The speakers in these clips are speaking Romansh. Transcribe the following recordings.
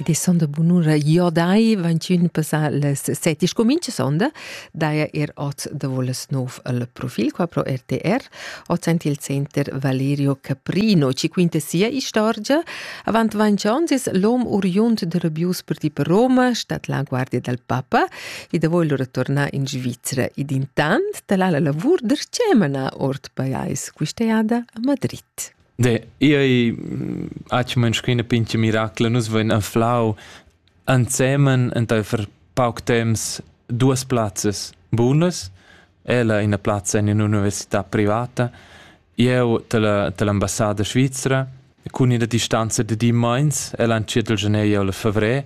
de sonda bunura iodai vantun passar les set is comincia sonda daia er ot da voles nov al profil qua pro RTR ot sent il center Valerio Caprino ci quinta sia istorgia avant vancions is l'om oriunt de Rabius per ti per Roma stat la guardia dal papa e da voglio ritornar in Svizzera ed intant talala lavur der cemana ort paiais quist'eada a Madrid De, ei aci menschina pinche miracla, nus vein anflau ansemen enteifer pauc temps duas plazzas bunas. Ella ina plazza in un'università privata. Jeu dall'ambassada svizra cun ina distanza de di meins, ella entschiet il gener jeu il fevrer.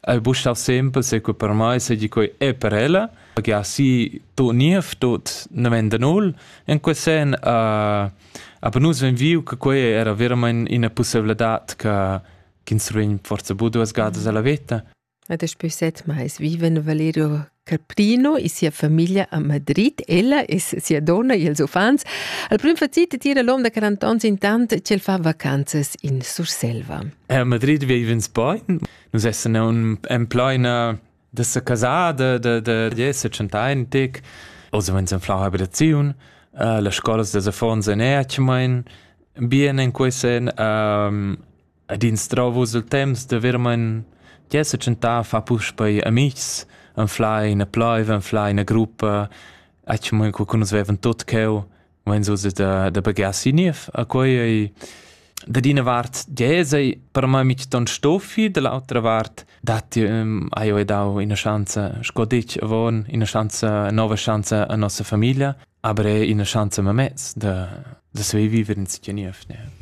El bustar sempre se que per mai seigi quei e per ella, che ha si tot niev, tot nemenda null. In quel sen uh, aber nus vein viu che quei era veramente ina possibilità che ins vegn forse bu duas gadas alla veta. Ad es pü set mais viven Valerio Caprino e sia famiglia a Madrid, ella e sia donna e els uffants. Al prim facit tira l'hom da 40 ans intant ch'el fa vacanzas in Surselva. A Madrid vivens bain. Nus essan en plaina da sa casada, da esser chantaintic. Oz vens en flan abitaziun. Uh, las scolas da affons en Erchmain. Bien en quesen um, ed instrau vus il temps da veramein che setschentar a far puspei amitgs, anflar ina pleiv, anflar ina gruppa, atg mo co nus vevan tot cheu, mein so da da baghear si niev. A quei ei da d'ina vart dies ei per mei mitg ton stoffi, da l'autra vart dat hai jeu dau ina schanza, sco detg avon, ina schanza, nova schanza a nossa famiglia, aber è ina schanza memez da da saver viver in sitio niev. Ne.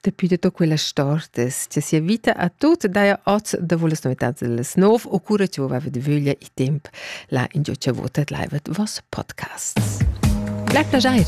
Dapi tutta quella stortas, che sia vita a tut daja oz da volas novitats las nov o cura che vova de vöglia i temp la ingio che votat laivet vos podcasts. Blei plageir!